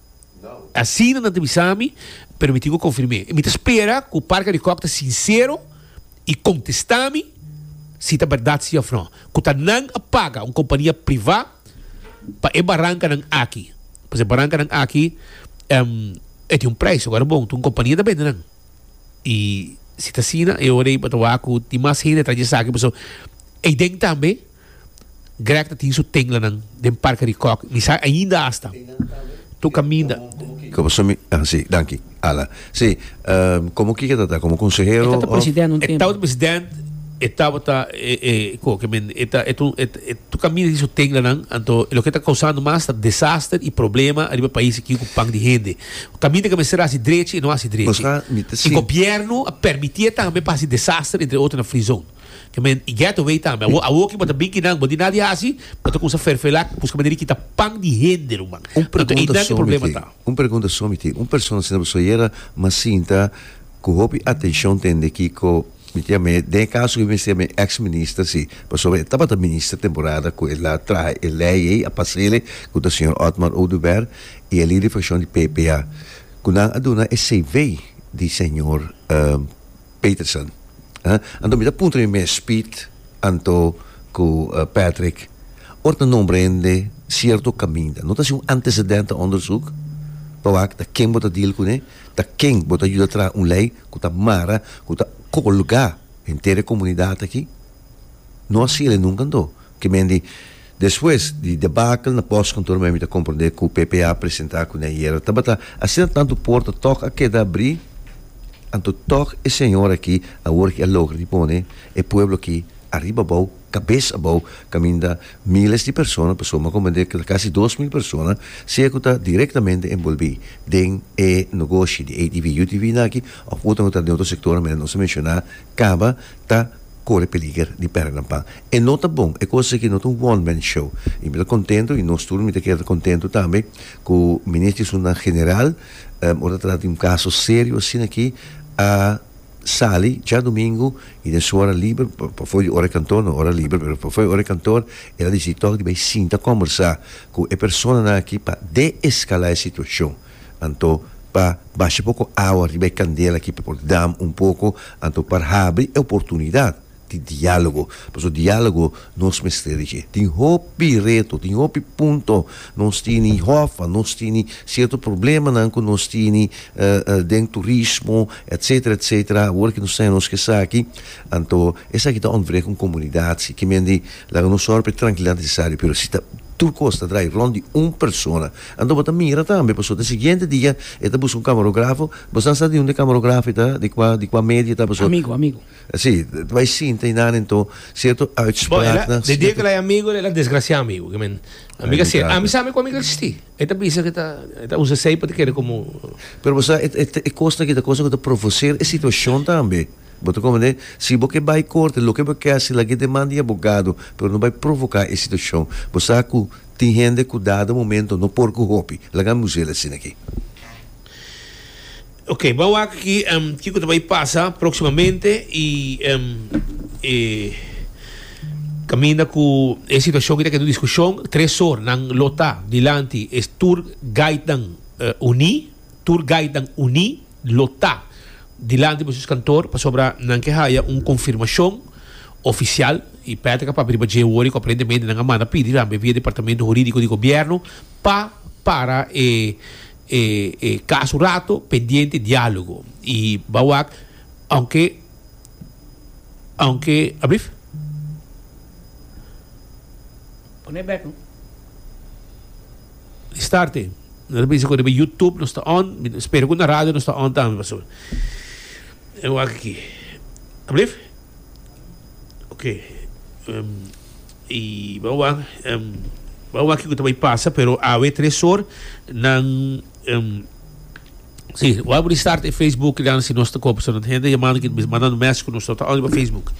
Asina nan ta bisa mi, pero mi tin ku konfirm'é. Mi ta spera ku Park a di Kòk ta sinsero i kontestá mi si ta bèrdat si òf nò, ku ta nan a paga un kompania privá pa e barankanan aki. Pasobra e barankanan aki e tin un preis su, bon tin un kompania ta bende nan. I si ta asina e ora ei bo ta wak ku tin mas hende atrás di esaki pasobra ei den tambe Greg ta tin su tenglanan den Parke di Kòk. Mi sa ainda asta tur kaminda. Komo su mi, ah si, danki, Ala. Si, komo kiko e tabata? Komo konsehero of? E tabata president un tempu. E tabata president, e tabata e, e, ku oke men, e ta, e ta un, e ta tur kaminda di su tenglanan, anto loke e ta kousando mas ta desaster i problema ariba pais aki ku pan di hende. Kaminda ke mester hasi drechi e no hasi drechi. I gobièrnu a permití e tambe pa hasi desaster entre otro na Free Zone. Te men i getaway tambe. Awor, awor ki bo ta bin kinan, bo di nada di hasi, bo ta kuminsa ferfelá, buska manera di kita pan di hende, ruman. Un Anto, ei pregunta nan ku e so mi problema tin, ta. un pregunta so mi tin. Un persona asina bo so yera mas sinta ku hopi atenshon ta hende kiko mi tin amé. Den e kaso ku mi mester mi eks minister, si, pasobra e tabata minister temporada ku el a traha e lei ei, a pasele, ku ta señor Otmar Oduber, i e lider di frakshon di PPA, ku nan a duna e CV di señor. Peterson. Anto mi ta puntra mi mes, Piet, anto ku Patrick, ora ta nombra hende sierto kaminda, no ta hasi un antecedente onderzoek pa wak ta ken bo ta deal kuné, ta ken bo ta yuda traha un lei ku ta mara, ku ta kolga henter e komunidat aki? No hasi el e nunka anto, ke men di. Despues di debacle na postkantoor mi ta komprendé ku PP a presentá ku den yera tabata asina tantu porta tòg a keda abrí anto tòg e señor aki awor aki a logra di pone e pueblo aki ariba abou kabes abou kaminda miles di persona pasobra mi a komprendé keda kasi dos mil persona sea ku ta direktamente enbolbí den e nogoshi di ATV UTV nan aki òf otro nan ku ta den otro sektor manera nos a menshoná kaba ta kore peliger di pèrdè nan pan. E no ta bon, e kos aki no ta un one man show. Y mi ta kontentu, y nos tur mi ta keda kontentu tambe, ku Minister di Sundanan General, ora ta trata di un kaso serio asina aki, a sali djadumingu y den su ora liber, pafo di ora di kantor, no ora liber, pero pafo di ora di kantor, el a disidí tòg di bai sinta kòmbersá ku e personanan aki pa deeskalá e situashon. Anto pa basha poko awa riba e kandel aki pa por dam un poko, anto pa habri e oportunidat di dialogo, paso dialogo nos mester di dje. Tin hopi reto, tin hopi punto nos tini hof, a nos tini cierto problemanan cu nos tini den turismo etcetera etcetera, awor cu nos ta nos cu esaki, anto esaki ta ontbreek un comunidad si kimendi laga nos ora pa e trankilidad necesario, pero si ta tur cos ta draai rond di un persona. Anto bo ta mira tambe paso den siguiente dia e ta busca un camarografo, bo sa sa di hunde camarografo e ta, di cua di cua medio e ta paso. Amigo amigo. Si, ta bay sinta y nan ento cierto uitspraaknan. Bo e la de dia cu el a bay amigo el a desgracia amigo cu men ami ca ser ami sabe cu ami ca existi e ta bisa cu e ta e ta usa esey pa ta kere como. Pero bo sa e e cosnan aki ta cosnan cu ta provocer e situacion tambe bo ta comprende si bo ke bay corte loke bo ke haci lag'e demanda e abogado pero no bay provoca e situacion bo sa cu Tin hende cu dado momento no por cu hopi. Laga mi usa el asina aki. Oke, bo a wak aki kico ta bay pasa proximamente y e caminda cu e situacion aki ta keda un discusion. Tres or nan lo ta dilanti e tour guidenan uni, tour guidenan uni. lo ta dilanti boso eskantor pasobra nan ke haya un konfirmashon ofisial i Patrick a papia riba dje wor i ku aparentemente nan a manda pidi tambe via Departamento Huridiko di Gobièrnu pa para e e kaso un rato pendiente dialogo i ba wak ounke ounke ablief. Di starte nos ta bisa ku riba YouTube nos ta on, spero ku na radio nos ta on tambe pasobra e wak aki. Alblief. Ok. E bo wak bo wak kiko ta bai pasa pero awe tres or nan si bo wak bo restart e Facebook nan si nos ta kob pasobra nos ta hende yamando aki ta bisa mandando mes ku nos no ta on riba Facebook.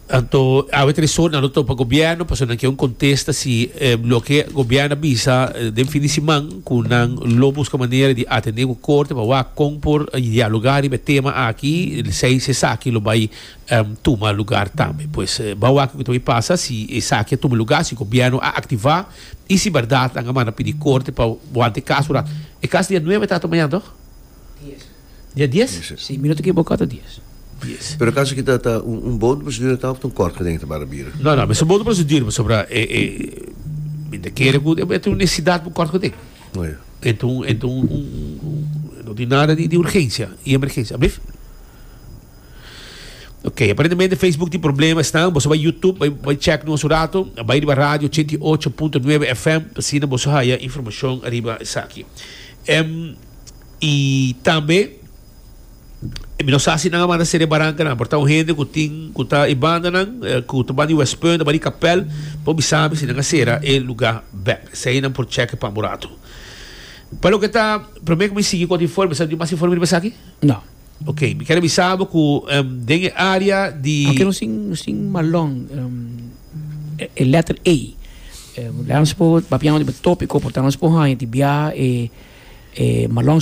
Anto awe tres or nan lo topa gobierno pasobra nan ke un contesta si loke gobierno a bisa den fin di siman cu nan lo busca manera di atende cu corte pa wak con por dialoga riba e tema aki lisei si esaki lo bay tuma lugar tambe pues ba wak loke ta bay pasa si esaki a tuma lugar si gobierno a activa y si berdad nan a manda pidi corte pa wanta e caso e caso dia nueve ta ato mañana toh? Dia dies? Si, mi no ta kiboká ta dies. Dies. Pero kaso ki ta ta un un bodo prosedura ta of ta un kort gedenk ta para bira? No no, mester bodo prosedura pasobra e e mi ta kere ku e ta un nesesidat pa un kort gedenk. Oh ya. E ta un e ta un un un no tin nada di di urgensia i emergensia. Ablief. Oke, aparentemente Facebook tin problema esnan. Boso bai Youtube bai bai chek nos un rato. A bai riba radio ochenta i ocho punto nuebe FM asina boso haya informashon ariba esaki. Em. y tambe e mi no sa si nan a manda ser e barancanan pero ta un hende cu tin cu ta e bandanan cu ta ban di west punt ta ban di capel por mi sabi si nan a cera e lugar bek esey nan por cheke pa murato pa loke ta primer cu mi sigui cu otro informe mi sa cu tin mas informe riba esaki. Ok, mi ker bisa bo ku em, den e área di Porque no sin, no sin malón. em, e, e letter A. Em, Leandro se po, papiano di tópico, por tanto se po haña di bia e, e malón